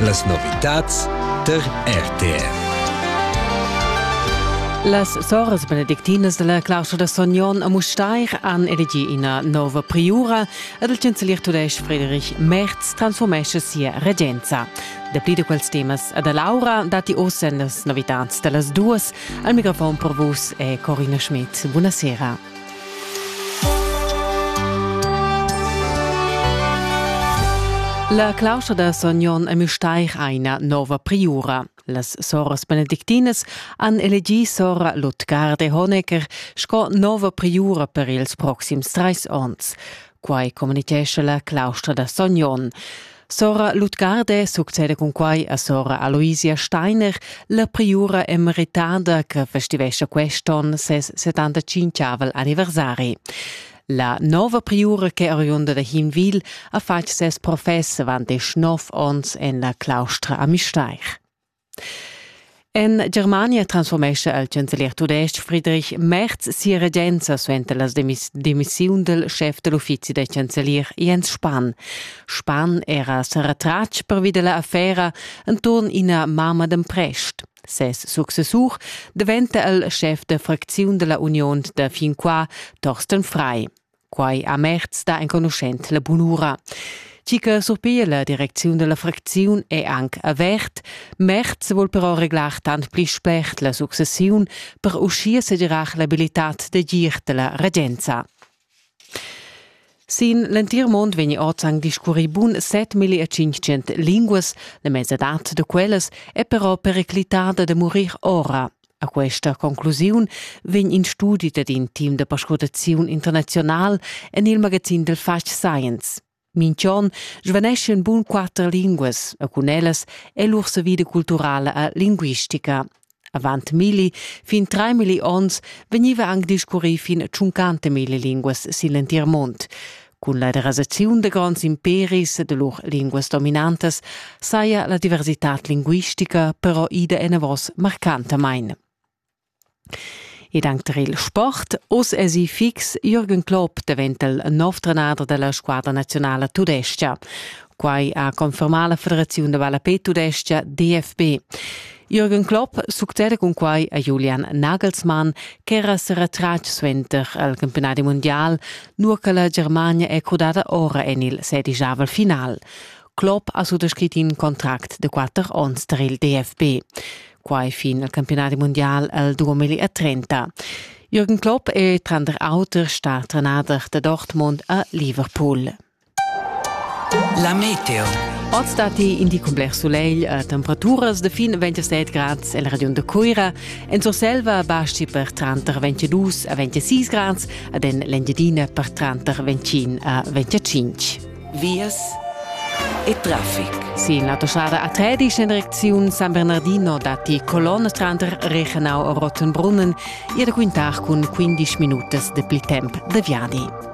Las novitads tar RTF. Las soras benedictinas della claustra da Sognon a Mustair han elegi ina nova priura ed il chancelier tudesc Friedrich Merz transformesce sia regenza. Dapli di quels temas ad Laura dati oz en las novitads dellas duas. Al microfon per vus è Corina Schmidt. Buonasera. La claustra da Son Jon a Müstair ha ina nova priura. Las soras benedictinas han elegì sora Lutgarde Honecker sco nova priura per ils proxims trais onns. Quai communitgescha la claustra da Sogn Onn. Sora Lutgarde succede cun quai a sora Aloisia Steiner, la priura emeritada che festivescha quest'onn ses 75 anniversari. La nova priura che oriunda da Hinwil ha fatg ses profess avant desch nov onns en la claustra a Misteir. En Germania transfurmescha il chancelier tudestg Friedrich Merz sia regenza suenter la demissiun dal schef da l'uffizi da chancelier Jens Spahn. Spahn era sa retratg pervi da l'affera enturn ina mamma d'emprest. Ses successur daventa il schef da fracziun da la Union da fin qua, Thorsten Frei. Quai a Merz da enconuschent la bunura. Chi che surpiglia la direcziun della fracziun è anche avert. Merz vuol però reglar tant pli spert la successiun per uscir segirar l'abilitad de gir della regenza. Sin l'entir mond vegni oz anc discurri bun 7500 linguas, la mesadad de quellas è però periclitada de murir ora. A questa conclusiun vegn in studi dad in team da perscrutaziun internazional en il magazin del Fatg Science. Minchon svanesce in bun quatter linguas, e cun ellas è lur savida culturala e linguistica. Avant milli fin tre milli onns vegniva anc discurrì fin a 50 milli linguas sin l'entir mund. Cun la derasaziun da gronds imperis e da lur linguas dominantas saja la diversitad linguistica però ida enavos marcantamain. Ed anche tar il sport, oz èsi fix, Jürgen Klopp daventa il nov trenader della squadra nazionale tudescha. Quai ha confermà la federaziun da balapè tudescha DFB. Jürgen Klopp succeda cun quai a Julian Nagelsmann ch'era se retratg suenter al campionadi mundial, nur che la Germania è crudada ora en il sedigiavel final. Klopp ha suttascrit in contract de quatter onns tar il DFB. Quai fin al campionadi mundial al 2030. Jürgen Klopp è tranter auter star trenader de Dortmund a Liverpool. La meteo. Oz datti in di cun bler sulegl, eh, temperaturas da fin 27 grads el regiun da Cuira. En Surselva basti per tranter 22 a 26 grads ad en l'Engiadina per tranter 25 a 25. Vias e traffic. Sin l'autostrada A13 in direcziun San Bernardino datti colonne tranter Reichenau e Rottenbrunnen, ihr da quintar cun 15 minutas de pli temp de viadi.